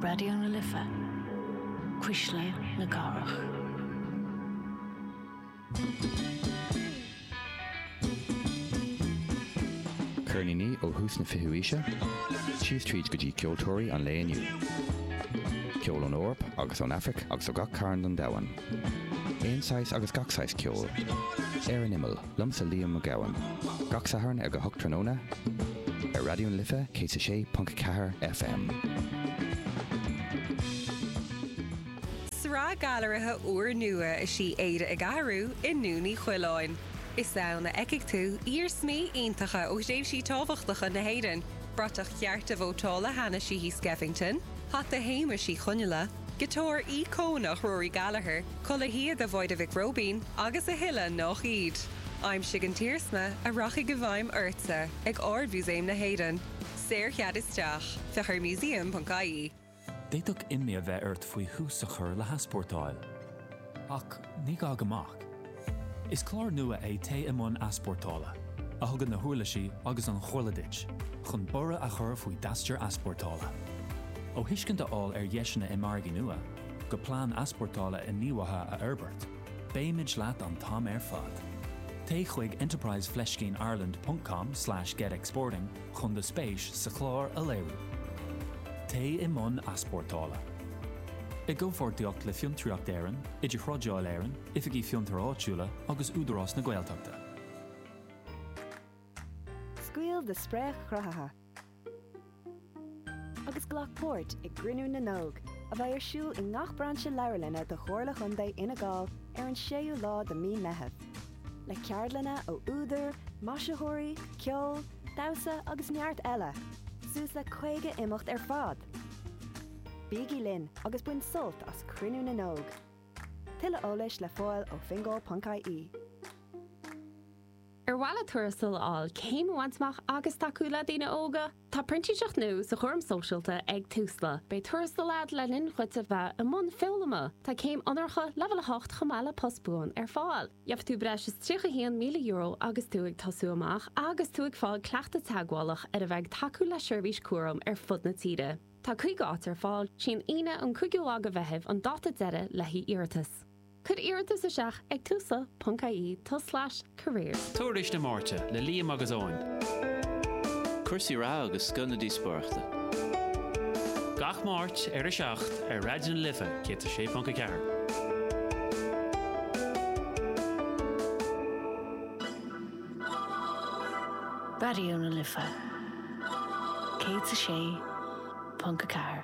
Raidió na Life, Cuisle na Cathrach. Ceirníní ó thús na fichiú aoise síos tríd go dtí ceoltóirí an lae inniu. Ceol ón Eoraip agus ón Aifric agus ó gach cearn don domhan. Aon saghas agus gach saghas ceoil. Ar an imeall. Liomsa Liam Ó Gabhann. Gach Satharn ag a hocht tráthnóna ar Raidió na Life 106.4 FM. Sraith gailearaithe úrnua is í Éire ag Athrú i nDún Uí Choileáin. Is ann a fheicfidh tú iarsmaí iontacha ó thréimhsí tábhachtacha na hÉireann, bratach chearta vótála Hanna Sheehy Skeffington, hata Shéamais Uí Chonghaile, Giotár íocónach Rory Gallagher, culaith shíoda bhuí Mhic Róibín agus a thuilleadh nach iad. Aimsigh an t-iarsma a rachaidh i bhfeidhm ortsa ag Ard-Mhúsaem na hÉireann. Saorchead isteach. Féach ar museum ponc ie. D'fhéadfadh imní a bheith ort faoi thús a chur le heaspórtáil. Ach ní gá go mbeadh. Is clár nua é Téigh i mBun Easpórtála, a thugann na huirlisí agus an chomhairle duit chun borradh a chur faoi d'aistear easpórtála. Ó thuiscint a fháil ar dheiseanna i margaí nua, go plean easpórtála inghníomhaithe a fhorbairt, beimid leat an t-am ar fad. Téigh chuig enterprise fleiscín ireland ponc com slash get exporting, chun do spéis sa chlár a léiriú. Téigh i mbun easpórtála. I gcomhpháirtíocht le Fiontraíocht Éireann, Idirthrádáil Éireann, Oifigí Fiontair Áitiúla agus Údarás na Gaeltachta. Scaoil do spréach chruthaitheach agus glac páirt i gCruinniú na nÓg, a bheidh ar siúl i ngach brainse leabharlanna de Chomhairle Chontae Fhine Gall ar an 6ú lá de Mhí Meitheamh. le ceardlanna ó údair, maisitheoirí, ceol, damhsa agus neart eile, suas le 50 imeacht ar fad! Bígí linn agus bain sult as Cruinniú na nÓg! Tuilleadh eolais le fáil ó fingal ponc ie. Ar mhaith leat tuarastal a fháil, céim a bhaint amach agus tacú le daoine óga? Tá printíseacht nua sa chúram sóisialta ag Tusla. Beidh tuarastal agat le linn dhuit a bheith i mbun foghlama. Tá céim onóracha, leibhéal 8, chomh maith le post buan ar fáil. Gheobhaidh tú breis is €31,000 agus tú ag tosú amach agus tú ag fáil cleachtadh teagmhálach ar a bheith ag tacú le seirbhís cúraim ar fud na tíre. Tá 50 áit ar fáil. Is í an Aoine an 5ú lá de Mheitheamh an dáta deiridh le haghaidh iarratas. Cuir iarratas isteach ag tusa ponc IE tus slais careers. Tuairisc na Máirte le Liam agus Eoin. Cúrsaí reatha agus scoth na díospóireachta. Gach Máirt ar 7 ar Raidió na Life 106.4. Raidió na Life 106.4.